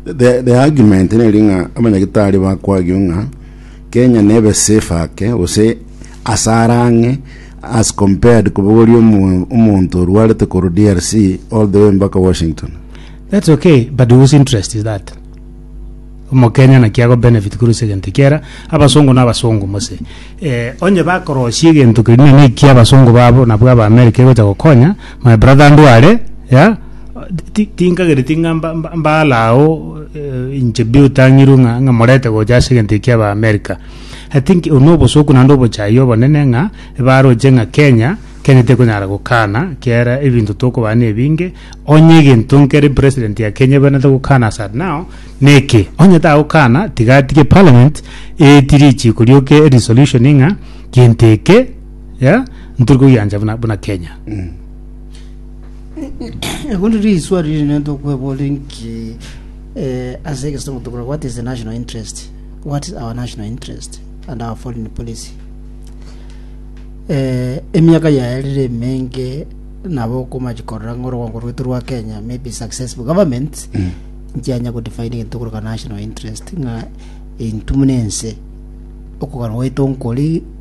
The, the argument neri ng'a abanyagitari bakwagio ng'a Kenya nebe safe ake gose asara ang'e as compared kobogoria omo- omonto orwarete koru DRC all the way mpaka Washington. That's okay, but whose interest is that? Omokenya naki ago benefit kore ase egento ekiara, abasongo na abasongo mose. Eh, onye bakorosia egento kerinde na ekiabasongo babo nabwo aba America egocha gokonya, my brother ndware, yeah, Tinkagereti ng'a mbaale ao inche bi otang'irwe ng'a morete gocha ase egento ekia aba America. I think obwo nobosoku naende obochayia obonene ng'a baroche ng'a Kenya, Kenya tekonyara gokana kiara ebinto tokobaa na ebinge, onye egento nkere president ya Kenya ebenerete gokana as at now neke, onye tagokana tiga atige parliament eetie richiiko rioka erisolution ng'a gento eke, yeah, ntori kogiancha buna Kenya. Ebundi riswali rinene ntokwebora inki eh, ase egesomo tokora what is the national interest what is our national interest and our foreign policy eh, emiaka yaerire emenge nabo okomachi korora ng'a orwango rwetu rwa kenya maybe successful government nchianya godefine egento koroka national interest ng'a intwe muna ense okogana gwaito nkori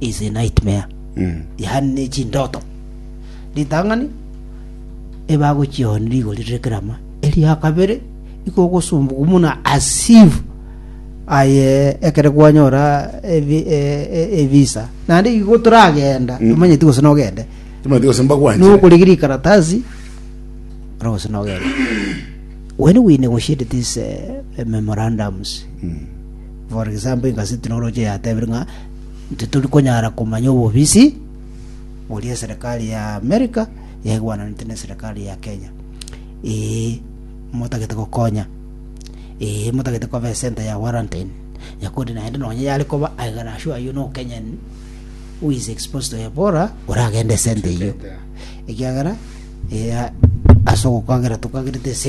is a nightmare Mm. yaani ne chindoto ritang'ani ebagochioni rigori rire kerama eria kabere ikogosumbuka muna asivu aye ekere kwanyora evi- e- e- evisa naende igo toragenda Mm. omanyeti gose nogende Timothy gose mbakwanchire. nokorigi rikaratasi ora gose nogende when we negotiated these uh, memorandums Mm. For example, inga setechnology yatebire ng'a titori konyara komanya obobisi boria eserekari ya America yaigwananete na eserekari ya Kenya. Ee, motagete gokonya. Ee, motagete koba esenter ya quarantine. Yakodi naende nonye yare koba I can assure you no Kenyan who is exposed to Ebola oragende esenter eyio. Ekiagera, ee, ase ogokagera tokagerete ase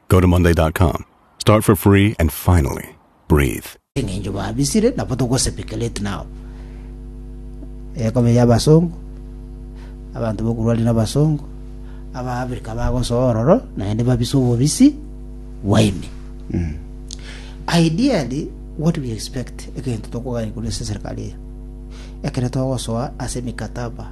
Go to Monday dot com. Start for free and finally breathe. eng'encho babisire nabo togosepekelate nao ekobe y'abasongo abanto bokurwari n'abasongo abaafrika bagosoa ororo naende babise obobisi bwaino ideally what we expect egento tokogania korwa ase eserikari eye ekero togosoa ase emikataba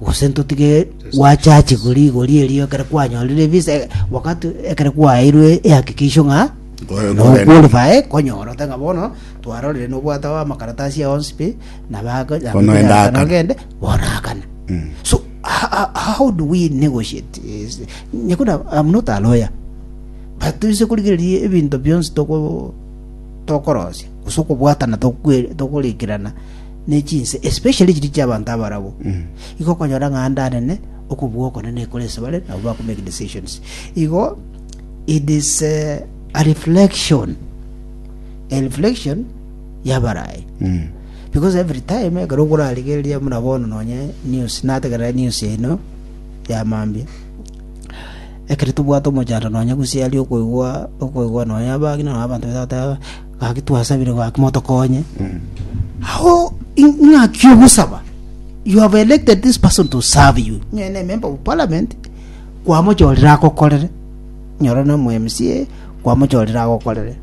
Gose ntotige gwachachigwe rigori erio ekero kwanyorire ebise, wakati ekero kwaeirwe ehakikisho ng'a Nkware- no nkware- qualify konyora ote ng'a bono twarorire nobwate amakaratasi ao onsi pi na bako na Bono enda akana. nogende bono akana Mm. so ho- ho- how do we negotiate is- nyakuna I'm not a lawyer but toise korigereria ebinto bionsi toko tokorosia gose okobwatana tokwe- tokorikerana ne chinse, especially chiria chi'abanto abarabwo, igo okonyora ng'a ande anene okobua okonene nekore ase bare, nabo bakomake decisions. Igo it is eh, a reflection a reflection y'abarayi because every time ekero okorarigereria buna bono nonye news nategerera news eno ya mambia ekero tobwate omochando nonye gose aria okoigwa okoigwa nonye abang'ina nonye abanto bagotaga Gaki twasabire gaki motokonye. How ing'aki ogosaba? You have elected this person to serve you. Nyore na member of parliament kwamochorire agokorere. Nyore na MCA kwamochorire agokorere.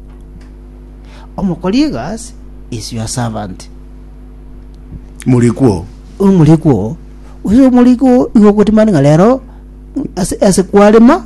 Omokori egasi is your servant. Murikwo. Omorikwo. Uyo omorikwo igo ogotimani ng'a rero ase ase kwarema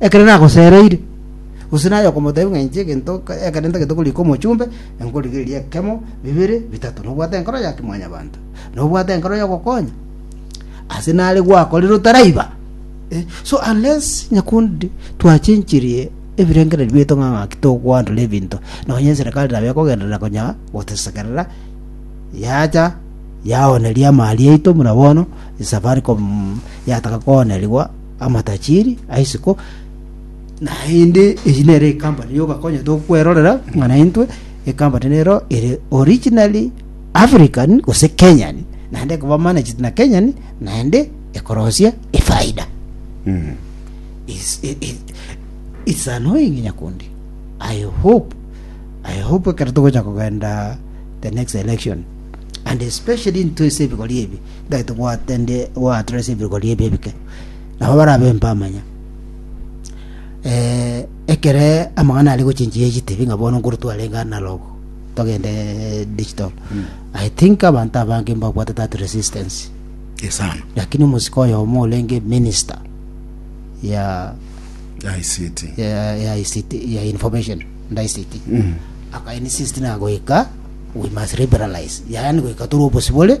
Ekero nagosereire, gose naye okomotebia ng'a inche egento ekero ntagete korika omochumbe, nkorigereria ekemo, bibere, bitato. Nobwate enkoro ya kimwanyabanto. Nobwate enkoro y'ogokonya. Ase nare gwakorire otaraiba. Eh, so unless nyakundi twachenchirie ebirengererio biaito ng'a ng'aki tokwandoria ebinto nonye eserikali nabo ekogenderera konya gotesekerera yacha yaoneria amari aito buna bono safaricom yataka koonerigwa Amatajiri a isiko, naende eyi nere ekampani yoka konya tokwerorera ng'ana intwe ekampani nero ere originally African gose Kenyan naende ekoba managed na Kenyan naende ekorosia efaida is, i- i- it's annoying nyakundi i hope i hope ekero togocha kogenda the next election and especially into ase ebigori ebi Tari tobwate ndi goatera ase ebiruka ri'ebi ebike, nabo barabempe amanya. Eh, ekere amang'ana aria gochenchia egitebi ng'a bono nkoro twarenge analog togende eh, digital i think abanto abange mbabwate that resistance esano lakini omosika oyomo orenge minister ya ICT ya, ya ICT ya information and ICT mm. akainsist na goika we must liberalize yaani goika tore obosibore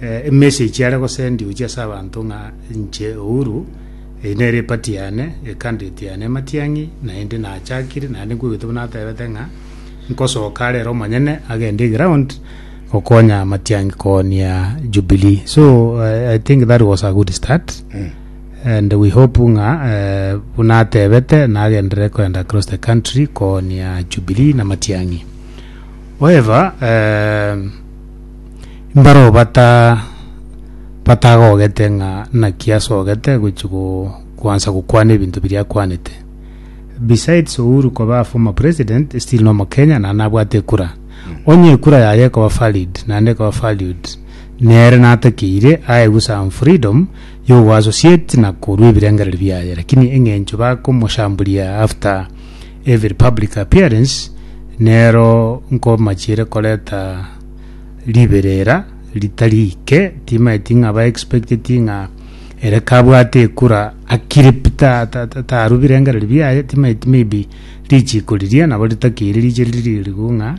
emessage are gosendiwa gochia ase abanto ng'a inche Uhuru, eye nere eparty yane, ecandidate yane Matiang'i, naende nachakire naende nkoigwete buna atebete ng'a nkosoka are ere omonyene agende eground gokonya Matiang'i koonia Jubilee. So eh, I think that was a good start and we hope ng'a eh, buna atebete nagenderere koenda across the country koonia Jubilee na Matiang'i. However, eh, Mbaro bata batagogete ng'a naki asogete gochia go koansa gokwana ebinto biria akwanete. Besides Uhuru koba a former president still no mokenya naende nabwate ekura. Onye ekura yaye ekoba valid naende ekoba valued nere natakeire aegwe some freedom yo go associate na korwa ebirengereri biaye lakini eng'encho bakomoshamburia after every public appearance nero nkomachiere koreta riberera ritari ike timaeti ng'a ba expecteti ng'a ere kabwate ekura akire pi ta- ta- ta- taru birengereri biaye timaeti maybe richiko riria nabo ritakeire riche riri riku ng'a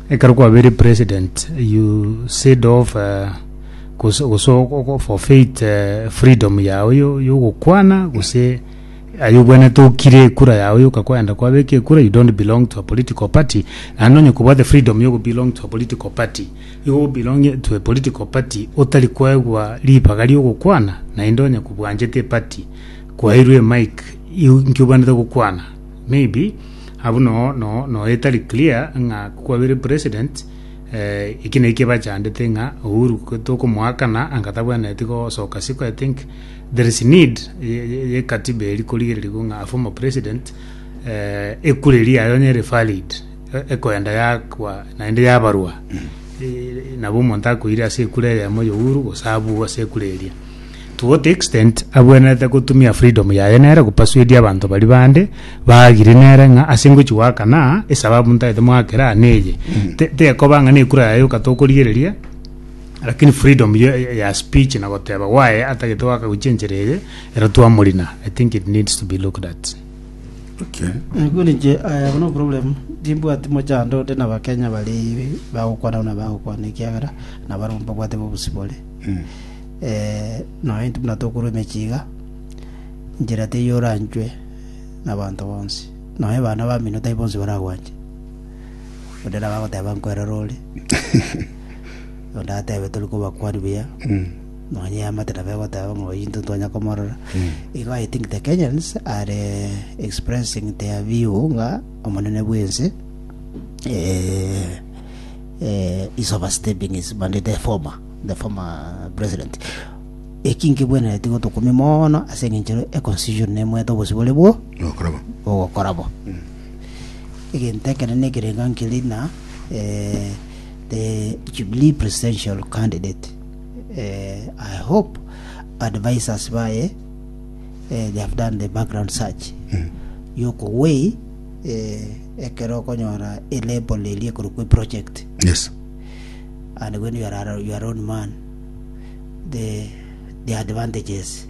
ekero kwabire president you said off eh, gose gose ogo- ogo- forfeit eh, freedom yago yo- yogokwana gose Aye obwenerete okire ekura yao yoka kwayenda kwabeka ekura you don't belong to a political party naende onye kobwate freedom yogo belong to a political party igo o belong to a political party otari kwaegwa ribaga riogokwana naende onye kobwanchete eparty kwairwe emic inki obwenerete gokwana maybe abwo no no no etari clear ng'a kwabire president eh, eki nekio bachandete ng'a Uhuru tokomoakana anga tabwenereti gosoka siko I think There is need ye katiba eri korigererigwa ng'a a former president eh, ekura eri yayo onye ere valid e- ekoenda yakwa naende yabarwa Eh, nabo omonto akoire ase ekura eyemo youru gose abwo ase ekura eria to what extent abwenerete gotumia freedom yaye nere gopasuedia abanto bari bande bagire nere ng'a ase ngochi goakana esababu ntaete moakera neye Te- tekoba ng'a nekura yaye okata okorigereria Lakini freedom ya, ya speech na goteba gwaye atagete gwakaguchia enchera eye, ero twamorina. I think it needs to be looked at. Okay. Nigwe ninche I have no problem timbwati mochando onde na bakenya bari bagokwana buna bagokwana ekiagera nabarabwo mbabwate bobosi bore Mm. eh noe intwe buna tokorwa emechie iga njera teiyo oranchwe nabanto bonsi noe bana bamino tai bonsi baragwanche Onde nabo agoteba nkwerore ore. Onde atebe tori kobakwani buya. Nonye yamate nabo egoteba ng'a oyi ntotwanya komorora. Igo I think the Kenyans are expressing their view ng'a omonene bwense eh, eh, is overstepping his mandate, the former, the former president. Eki nkibwenereti gotokumia mono ase eng'encho e constitution nemwete obosibore bwo Nokorabo. bogokora bo Egento ekenene ekerenga nkere na the Jubilee presidential candidate. I hope advisors baye they have done the background search yokowei ekero okonyora elabel eria ekorokwa project Yes. and when you are, you are own man the, the advantages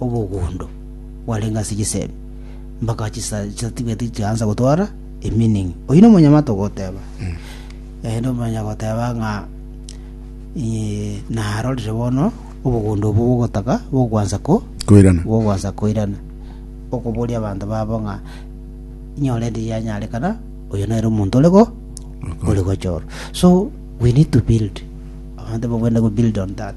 obogondo bwarenge ase chisemi, mpaka chisa- chisatibwete chiaansa gotwara emining. Oyio na omonyamate ogoteba, eh, na omanya goteba ng'a eh, narorire bono obogondo obo bogotaka bokwansa ko Koirana. bokwansa koirana okoboria abanto babo ng'a nyorente yanyarekana oyo nere omonto ore go ore gochorwa so we need to build abanto bagende go build on that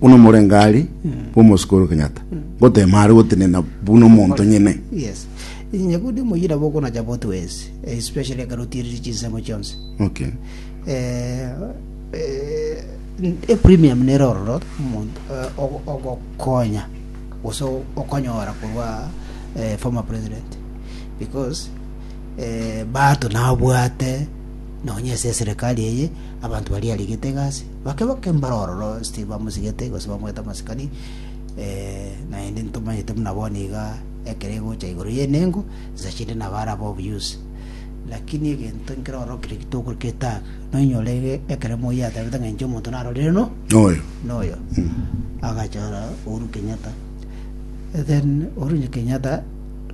Buna omorengari bw'omosike ore Kenyatta, ngoteema are gotenena buna omonto nyene. Yes. Inye buna omoyira bokonacha both ways, especially ekarutiririe chinsemo chionsi. Okay. Eh, eh, e premium nere ororo omonto eh, ogo- ogokonya gose okonyora korwa eh, former president because eh, bato nabwate nonya ase eserikali eye abanto bari arigete egasi Bakeboke mbare ororo Steve amosigete gose bamoete amasikani, naende ntomanyete buna bono iga ekero egocha igoro y'enengo, nsa chinde nabo arabe obuyusi. Lakini egento nkere ororo keria gitokora ketaaka, noinyore iga ekero moi ateebete ng'a inche omonto narorire no Noyo. noyo agachora Uhuru Kenyatta then Uhuru Kenyatta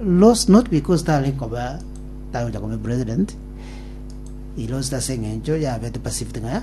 lost not because tari koba tari gocha koba president he lost ase eng'encho yabete perceived ng'a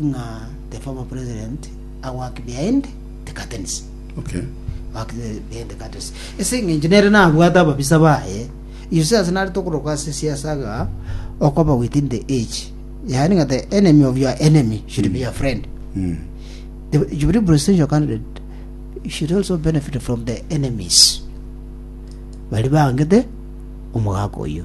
ng'a the former president a work behind the curtains Okay. work the- behind the curtains ase eng'encho nere nabwate ababisa baye uses nare tokoroka ase siasa ga okoba within the age yaani ng'a the enemy of your enemy should be your friend Mm. the Jubilee presidential candidate should also benefit from the enemies bari bangete omogaka oyo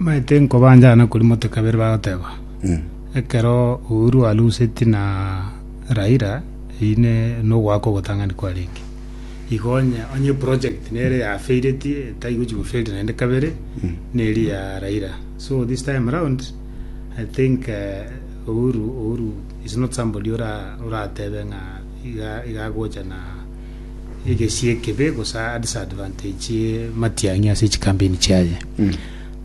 Mbaete nkobanchana kori mote kabere bagoteba ekero Uhuru alusetie na Raila eyine nogoaka ogotang'ani kwarenge igo onye onye project nere yafeireti etaigochi goferi naende kabere neri ya Raila so this time round I think Uhuru Uhuru is not somebody ora oratebe ng'a iga iga agocha na egesie ekebe gose a disadvantage eh, matiang'i ase chikampeni chiaye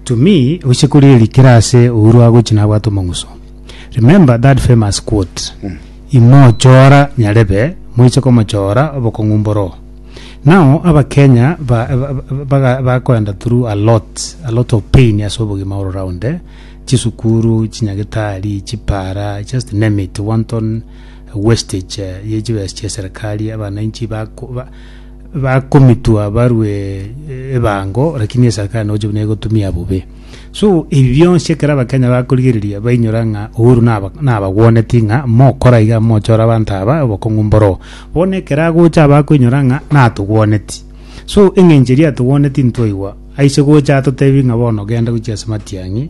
to me oise koria erikire ase uhuru agochi nabwate omong'uso remember that famous quote imochora nyarebe moise komochora obokong'u mboro now abakenya ba- ba- ba- baga- bakoenda through a lot a lot of pain ase obogima all round eh, chisukuru chinyagetari chipara just name it wanton wastage ye chibesa chia serikali abananchi bako ba- bakomitwa barwe eh, ebango lakini eserikali noche buna egotumia bobe so ebi bionsi ekero abakenya bakorigereria bainyora ng'a uhuru naba- nabagweneti ng'a mokora iga mochora abanto aba obokong'u mboro bono ekero agocha abakoinyora ng'a natogweneti so eng'encho eria atogweneti ntwaigwa aise gocha atotebi ng'a bono genda gochia ase matiang'i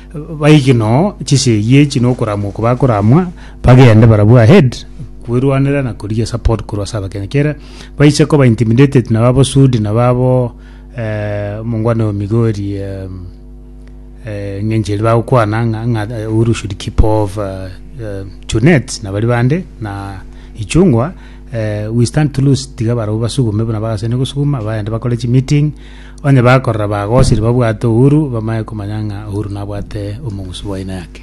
Baike noo chisegi echi nokoramwa oko bakoramwa bagende barabwo ahead kwerwanera na korigia support korwa ase abakenya kere baiche koba intimidated naba abo sudi naba abo eh, omongwana oyo migori eh, eh, ng'enche eri bagokwana ng'a- ng'a eh, uhuru should keep off eh, eh, junet na bari bande na ichungwa eh, we stand to lose tiga barabwo basugume buna bagasene gosuguma bagende bakore chimeeting Onye bakorora bagosiri babwate Uhuru, bamanye komanya ng'a Uhuru nabwate omong'usi bw'aina yake.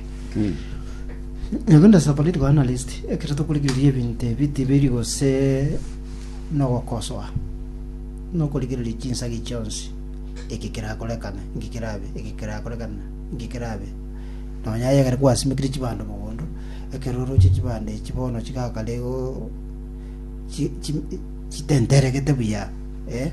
Uganda as a political analyst, ekero tokorigereria ebinto ebi tibiri gose nogokosoa, nokorigereria chinsagi chionsi, eke kerakorekana, eke kerabe, eke kerakorekana, eke kerabe. Nonya aye ekero kwasimekire chibando mogondo, ekero oroche chibando echi bono chigakare igo chi- chi- chitenteregete buya, eh.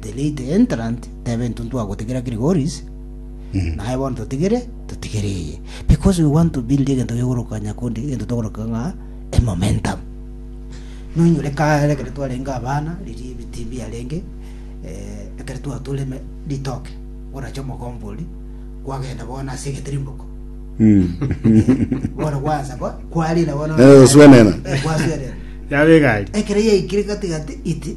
The late entrant tebe intwe ntwagotigera Gregory's naye bono totigere totigere eye because we want to build egento gegoroka nyakundi egento togoroka ng'a a momentum nonyore kare ekero twarenge abana riria ebiti biarenge eh, ekero twatura eme- ritoke orache omogomba oria kwagenda bono ase egetirimboko bono gwansa kwa- kwarira bono Eh, oswenena. Eh, kwaswenena Yabe egari. ekero yaikire gati gati iti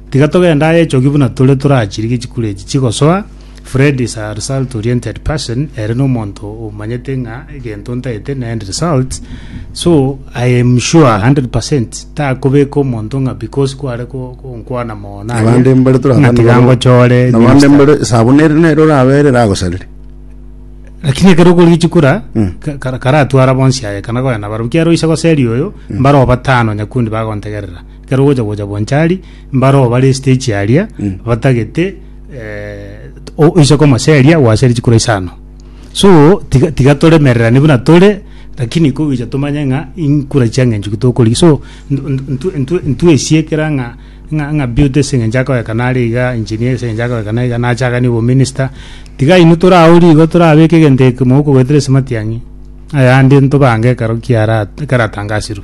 Tiga togende aye echoki buna tore torachirige chikura echi chigosoa. Fred is a result oriented person, ere nomonto omanyete ng'a egento ntaete ne end result, so I am sure 100% takobeka omonto ng'a because kware ko- konkwana mono aye, abande mbare ng'a torakwana tiga babo. ngochore Na abande minister. mbare esabuni ere nero orabere eragosarire Lakini ekero okorigia chikura Mm. ka- kara- karatwara bonsi aye ekana koyana baro kiaro oise goseri oyo mbaro batano nyakundi bagontegerera Ekero ogocha gocha Bonchari, mbare oo bare estage aria Mm. batagete eh, o- oise koma seria gwaseri chikura isano. So tiga tiga toremererane buna tore lakini kogicha tomanye ng'a inkura chiang'encho ki tokorigia. So ntu- ntu- ntu- ntu- ntwesiekera ng'a ng'a ng'a beauty ase eng'encho akoyaka nare iga, engineer ase eng'encho akoyaka nare iga, nachaganie obominister. Tiga inwe tore agwo rigo torabeke egento ekemo okogoetera esimati ang'e. Ayande ntobange ekero kiara ekero atangasirwe.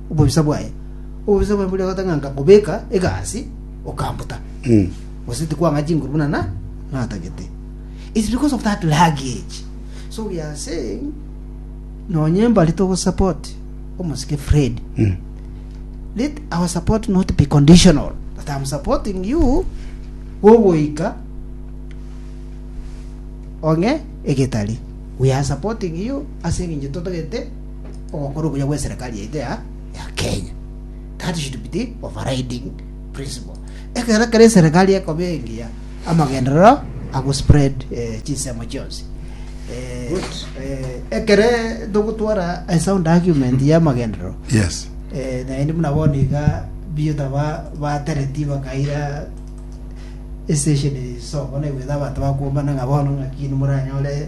obobisa bwaye. Obobisa bwaye boria ogotanga nkabobeka egasi, okambuta. Gose tikwang'a chinguru buna na natagete. It's because of that luggage. So we are saying nonye mbare togo support omosike Fred. Let our support not be conditional. That I'm supporting you gogoika ong'e egetari. We are supporting you ase eng'encho totagete ogokora obuya gw'eserekari yaito ya ya Kenya. That should be the overriding principle. Ekero kera eserekari ekoba engiya amagenderero agospread eh, chinsemo chionsi. Eh, Good. eh, ekere togotwara a sound argument ya amagenderero Yes. eh, naende buna bono iga biyota ba- batereti bakaira estation sobono egweta abanto bakuombana ng'a bono ng'aki nimoranyore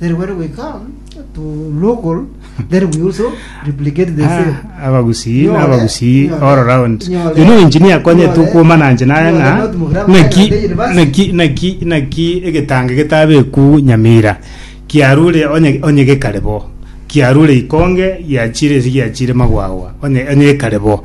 Then when we come to local, then we also replicate the same. Ah, abagusii Nyora, na abagusii nyora, all around nyora, you know engineer konye nyora, tukuma nanje naye nyora, ng'a not Mugirango naki Nairobi University. naki naki naki egetange getabeku nyamira kiarure onye onye gekare bo kiarure ikonge giachire esi giachire magwagwa onye onye gekare bo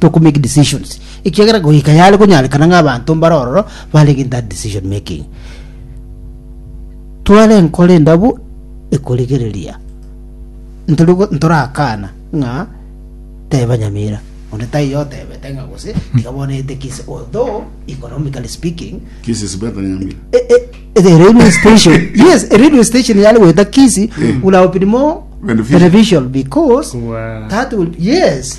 to ko make decisions ekiagera goika yare konyarekana ng'a abanto mbare ororo barenge in that decision making tware enkoro endabu ekorigereria ntori go- ntorakana ng'a teba nyamira onde taiyo otebete ng'a gose tiga bono ete kisi although economically speaking Kisi is better than Nyamira. Eh, eh, the radio station yes a radio station yale weta kisi would have been more Beneficial. beneficial because Kubwa- that will yes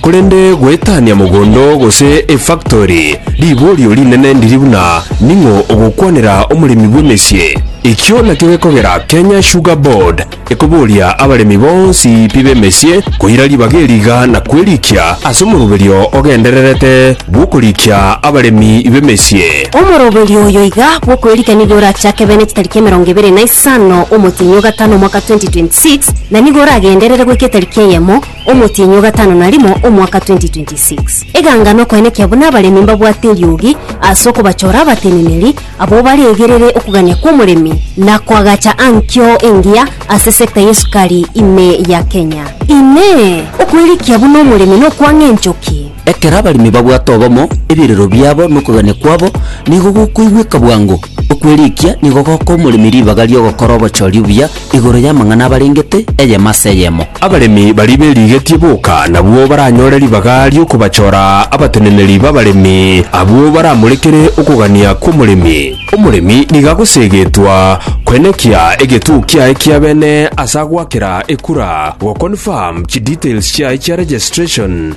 Korende goetania mogondo gose efaktori, riborio rinene ndiri buna ning'o ogokwanera omoremi bw'emesie. Ekio nakio gekogera Kenya Sugar Board ekoboria abaremi bonsi pi b'emesie koira ribaga eri iga na kwerikia ase omoroberio ogendererete bw'okorikia abaremi b'emesie. Omoroberio oyo iga bw'okwerikia nigo orachake bene chitariki emerongo ebere na isano omotienyi o gatano omwaka 2026 na nigo oragenderere goika etariki eyemo Omotienyi o gatano na rimo omwaka 2026. Eganga nokoenekia buna abaremi mbabwate eriogi ase okobachora abateneneri abwo baregerere okogania kw'omoremi na koagacha ankio engiya ase sector y'esukari ime ya Kenya. Inee! Okoirikia buna omoremi nokwang'a enchoki? Ekero abaremi babwate obomo, ebirero biabo na okogania kwabo nigo gokoigweka bwango. Okweriikia nigo gokoa omoremi ribaga ri'ogokora obochori obuya igoro y'amang'ana abarengete eyemo ase eyemo. Abaremi baria berigetie boka nabwo baranyore ribaga ri'okobachora abateneneri b'abaremi, abwo baramorekere okogania kw'omoremi. Omoremi nigo agoseegetwa koenekia egetuo kiaye kia bene ase agoakera ekura, goconfirm chidetails chiaye chia registration,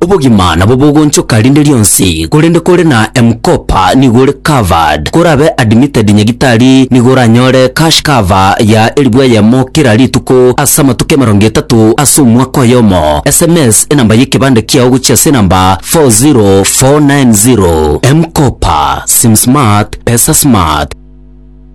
obogima nabo bogonchoka rinde rionsi korende kore na mkopa nigo ore covered korabe admitted nyagitari nigo oranyore cash cover ya elfu eyemo kera rituko ase amatuko emerongo etato ase omwaka oyomo sms enamba yekebande kiao gochia ase enamba 40490 mkopa sim smart pesa smart